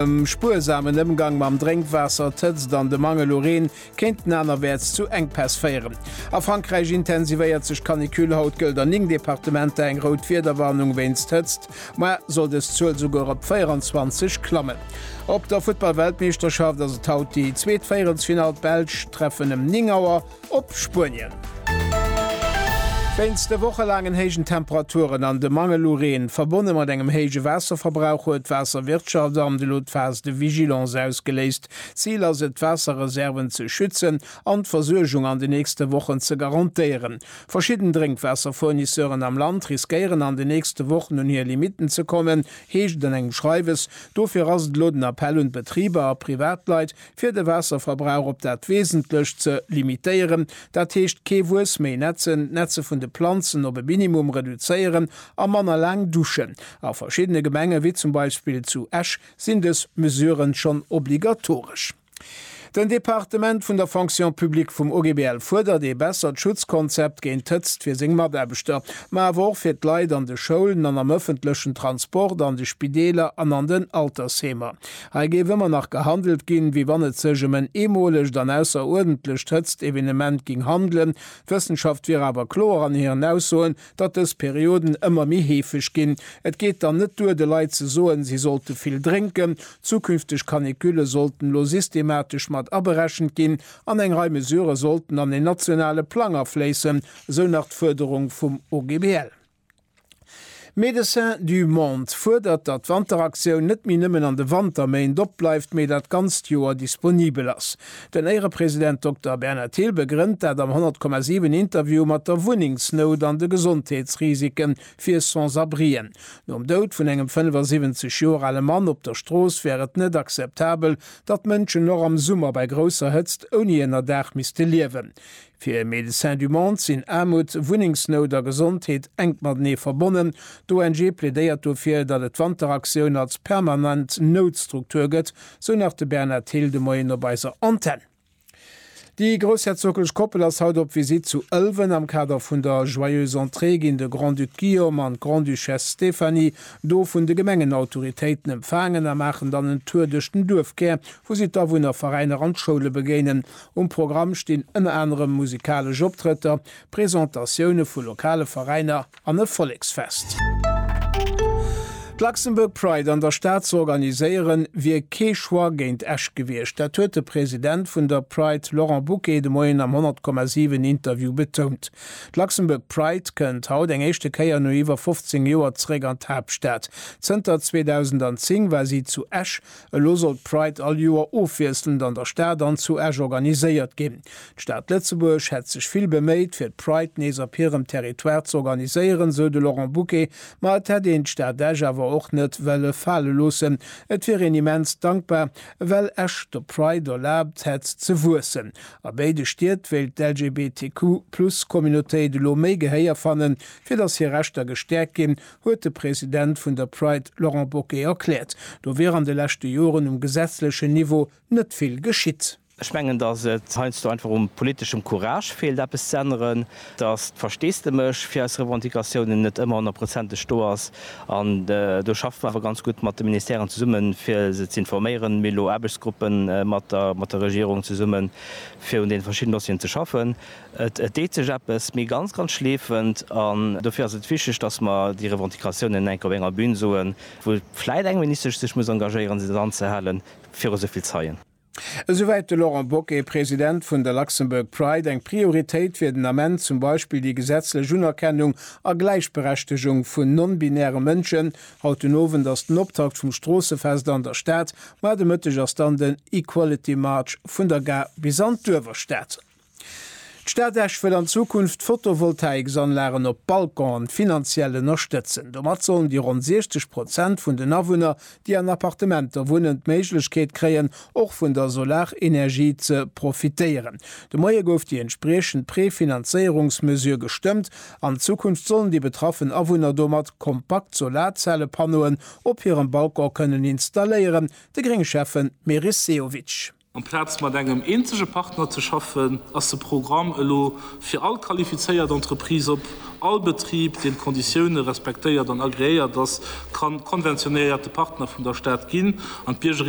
Dem spuersamen Ëmgang mam Drénkwaasser, d'Hëtzt an de Mangel u Reen kéinten anerwäerts zu Enkpäss féieren. A Frankräich intensivéiert sech d'Canicule. Haut gëllt an 9 Departementer eng rout Wiederwarnung wéinst Hëtzt. Moie soll dës Zuel esouguer op 24 klammen. Op der Futtball-Weltmeeschterschaft ass et haut déi zweet Véierelsfinall. D'Belsch treffen ëm 9 Auer Op Spuenien. Wéinst de wochelaangen héijen Temperaturen an dem Mangel u Reen, verbonne mat engem héije Waasserverbrauch, huet d'Waasserwirtschaftamt elo d'Phase de vigilance ausgeléist. Zil ass et, d'Waasserreserven ze schützen an d'Versuergung an de nächste Wochen ze garantéieren. Verschidden Drénkwaasserfournisseuren am Land riskéieren an de nächste Wochen un hir Limitten ze kommen, heescht et an engem Schreiwes. Dofir ass et elo den Appell un d'Betriber a Privatleit, fir de Waasserverbrauch op dat Wesentlecht ze limitéieren, dat heescht kee Wues méi nätzen, d'Nätze vun de Planzen op e Minimum reduzéieren a manner laang duschen. A verschiddene Gemenge wéi zum Beispill zu Esch sinn dës Mesuren schonn obligatoresch. Den Departement vun der Fonction publique vum OGBL fuerdert ee bessert Schutzkonzept géint d'Hëtzt fir seng Mataarbechter, ma awer och fir d'Leit an de Schoulen an am ëffentlechen Transport, an de Spideeler an an den Altersheemer. Hei géif ëmmer nach gehandelt ginn, wéi wann et sech ëm en eemolegt an ausseruerdentlecht Hëtzt-Evenement ging handelen. D'Wëssenschaft wier awer kloer an hiren Aussoen, datt dës Perioden ëmmer méi heefeg ginn. Et geet dann net duer, de Leit ze soen, si sollte vill drénken. Zukünfteg Caniculle sollten elo systematesch mat aberechent ginn an eng Rei Mesurë sollten an en nationale Plang afléissen, esou nach d'Fuerderung vum OGBL. Médecins du Monde fuerdert, datt d'Wanteraktioun net méi nëmmen an de Wanterméint opbleift, mee dat ganzt Joer disponibel ass. Den Éierepresident Dokter Bernard Thill begrënnt dat am 100,7 Interview mat der Wunnengsnout an de Gesondheetsrisike fir Sans-abrien. Nom Doud vun engem 75 Joer ale Mann op der Strooss wär et net akzeptabel, datt Mënschen och am Summer bei grousser Hëtzt ouni Ënnerdaach misste liewen. Fir e Médecin du Monde sinn Aarmut, Wunnengsnout a Gesondheet enk matenee verbonnen. D'ONG plädéiert dofir, datt et d'Wanteraktioun als permanent Noutstruktur gëtt, sou nach de Bernard Thill de Moien op eiser Antenn. Déi groussherzoglech Koppel ass haut op Visitt zu Ëlwen. Am Kader vun der Joyeuse Entrée ginn de Grand-Duc Guillaume an d'Grande-Duchesse Stéphanie do vun de Gemengenautoritéiten empfaangen a maachen dann en Tour duerch den Duerfkär, wou si d'Awunner, Veräiner an d'Schoule begéinen. Um Programm stinn ënner anerem musikalesch Optrëtter, Presentatioune vu lokale Veräiner an e Volleksfest. D'Luxembourg Pride an der Stad ze organiséieren, wier kee Choix géint Esch gewiescht. Dat huet de President vun der Pride Laurent Bucquet de Moien am 100,7 Interview betount. D'Luxembourg Pride kënnt haut eng éischte Kéier no iwwer 15 Joer zeréck an d'Haaptstad. Zënter 2010 war si zu Esch, Elo soll d'Pride all Joer ofwiesselnd an der Stad an zu Esch organiséiert ginn. D'Stad Lëtzebuerg hätt sech vill beméit, fir d'Pride nees op hirem Territoire ze organiséieren, sou de Laurent Bucke. Ma et hätt een d'Stad Esch awer och net wëlle fale loossen. Et wier een immens dankbar, well Esch der Pride erlaabt hätt, ze wuessen. A béide Stied wéilt d'LGBTQ-Plus-Communautéit elo méi Gehéier fannen, fir datt hir Rechter gestäerkt ginn, huet de President vun der Pride Laurent Bocquet erkläert. Do wier an de leschte Joren um gesetzlechen Niveau net vill geschitt. Ech mengen, datt et heiansdo einfach u politeschem Courage feelt eppes ze änneren, datt d'Versteesdemech fir eis Revendicatiounen net ëmmer honnertprozenteg do ass. An do schaffe mer awer ganz gutt mat de Ministèren zesummen, fir se ze informéieren. Mir elo Aarbechtsgruppe mat der Regierung zesummen, fir un deene verschidden Dossieren ze schaffen. Et deet sech eppes, mee ganz, ganz schleefend. An dofir ass et wichteg, dass mer déi Revendicatiounen enk op enger Bühn soen, wou vläit eng Ministesch sech muss engagéieren, se dann anzehalen viru sou vill Zeien. Esouwäit de Laurent Boquet, President vun der Luxembourg Pride. Eng Prioritéit wier den Ament zum Beispill déi gesetzlech Unerkennung a Gläichberechtegung vun non-binäre Mënschen. Haut den Owend ass den Optakt vum Stroossefest an der Stad. Mar de Mëtteg ass dann den Equality March vun der Gare bis an d'Uewerstad. D'Stad Esch wëll an Zukunft Photovoltaïques-Anlagen op Balconen finanziell ënnerstëtzen. Domat sollen déi ronn 60 Prozent vun den Awunner, déi an Appartementer wunnen, d'Méiglechkeet kréien, och vun der Solarenergie ze profitéieren. De Moie gouf déi entspriechend Prefinanzéierungsmesure gestëmmt. An Zukunft sollen déi betraffen Awunner domat kompakt Solarzellepannoen op hirem Balcon kënnen installéieren. De Grénge-Schäffe Meris Sehovic. Amplaz mat engem eenzege Partner ze schaffen, ass de Programm elo fir all qualifizéiert Entreprise op. All Betrib, deen d'Konditioune respektéiert an agreéiert ass, kann konventionéierte Partner vun der Stad ginn an d'Biergerinnen